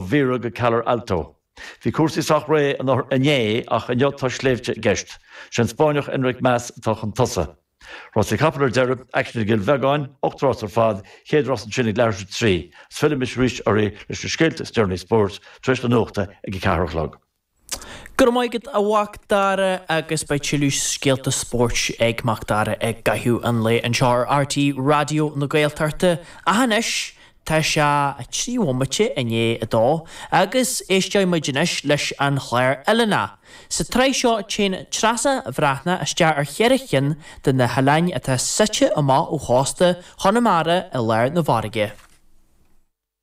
Vera go Calar Alto. Bhí cúrsaí sách réidh anuraidh, inné, ach inniu tá sléibhte i gceist. Sé an Spáinneach Enric Mas atá chun tosaigh. Rásaí capall ar deireadh, aicsean i gCill Bheagáin, ocht rás ar fad, chéad rás ansin ag leathuair tar éis a trí. Is fillfidh mise arís oraibh leis na scéalta is deireanaí spóirt tar éis na nuachta ag a ceathair a chlog. Go raibh maith agat a Mhacdara agus beidh tuilleadh scéalta spóirt ag Macdara i gcaitheamh an lae anseo ar RTÉ Raidió na Gaeltachta ach anois tá sé trí bhomaite i ndiaidh a dó agus éisteoidh muid anois leis an chlár Oileán Sa tsraith seo téann Treasa Bhreathnach isteach ar cheithre chinn de na hoileáin atá suite amach ó chósta Chonamara i lár na bhfarraige.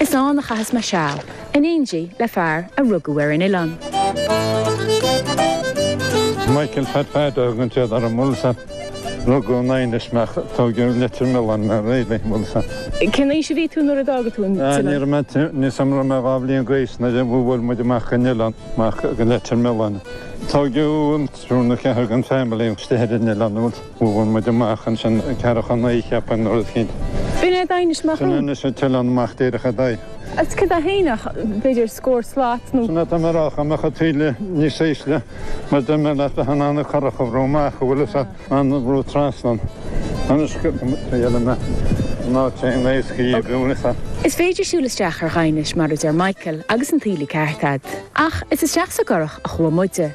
Is ann a chaitheas mé seal, in éindí le fear a rugadh ar an oileán. Michael Phat Phat a thugann siad ar an mbaile seo. Rugadh i nDaighinis mé ach, tógadh i Leitir Mealláin mé ar an mbaile seo. Cén aois a bhí tú nuair a d'fhág tú an t-oileán? Níl 'fhios a'm an raibh mé dhá bhliain d'aois nuair a bhuail muid amach den oileán, amach go Leitir Mealláin. Tógadh triúr nó ceathrar den family istigh ar an oileán. Bhuail muid amach ansin ceathracha naoi, cheapaim, nó rud eicínt. B'in é Daighinis Sin é anois an t-oileán amach díreach ar d'aghaidh. Agus cad a shíneodh, b'fhéidir, scór slat nó. Sin é atá mé a rá, dá mbeadh an taoille níos ísle, mar deir mé leat, bheadh in ann an curach a bhrú amach, an bhfuil 'fhios a'd, a bhrú trasna. Anois, go dtuigeann mé, ná téigh in aos guí, an bhfuil 'fhios a'd. Is féidir siúl isteach ar Dhaighinis, mar a deir Michael, agus an taoille ceart a'd. Ach is isteach sa gcurach a chuaigh muide.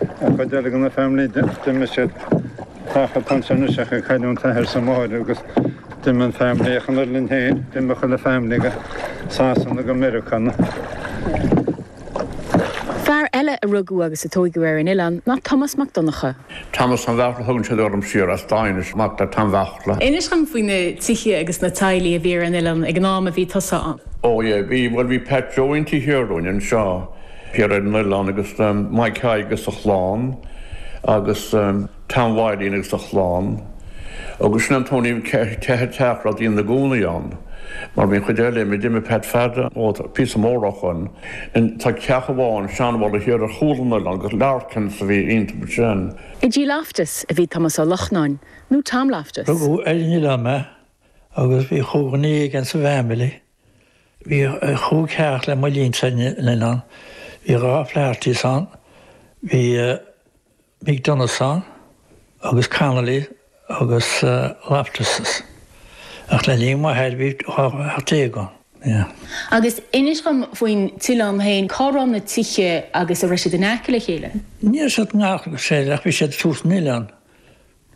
Ar feadh deireadh na family d'imigh siad Tacha Tom Seirniseach ag cailliúint teitheadh sa mbáire agus d'imigh an family as an oileán féin, d'imigh chuile family go Sasana, go Meiriceá na. Fear eile a rugadh agus a tóigeadh ar an oileán ná Tomás Mac Donnchadha. Tomás Tom Bheartla a thugann siad orm thiar as Daighinis, is mac le Tom Bheartla. Inis dhom faoi na tithe agus na teaghlaigh a bhí ar an oileán ag an am a bhí tusa ann. Ó, yeah, bhí, bhuel bhí Pat Joe inti thiar dúinn anseo. Thiar ar an oileán agus Maidhc Thaidhg agus a chlann agus Tom Bhaidhín agus a chlann agus sin an t-aon cheithre teach a raibh daoine ina gcónaí ann mar bhí an chuid eile, mar d'imigh Pat Pheaidí ó phíosa mór acu ann. Tá teach amháin, seanbhalla, thiar ar chúl an oileáin agus Larkins a bhí iontu ansin. I dTigh Loftus a bhí Tomás Ó Lochnáin nó Tom Loftus. Rugadh ar an oileán mé agus bhí ocht nó naoi againn sa bhfamily Bhí chúig theach le mo linnse ann. Bhí dhá Flahertys ann. Bhí McDonaghs ann agus Connolly agus Loftuses ach le linn m'athar bhí dhá theach déag ann. Agus inis dhom faoin t-oileán féin, cá raibh na tithe agus a' raibh siad in aice le chéile? Ní raibh siad i ngar dá chéile ach bhí siad suas an oileán.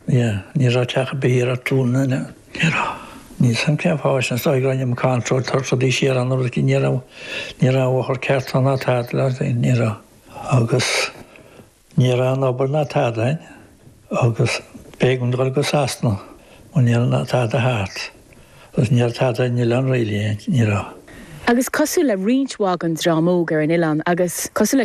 Ní raibh teach ar bith thiar ar Cluain na nEan. Ní raibh. Níl a fhios agam cén fáth sin, is dóigh go raibh an ceantar rófhada siar ann agus ní raibh, ní raibh bóthar ceart ann ná tada mar sin, ní raibh. Agus ní raibh aon obair ná tada ann agus b'éigean dul go Sasana mar ní raibh tada thart agus ní raibh tada ar an oileán really, ní raibh. Agus cosúil le roinnt mhaith den dream óg ar an oileán agus cosúil le.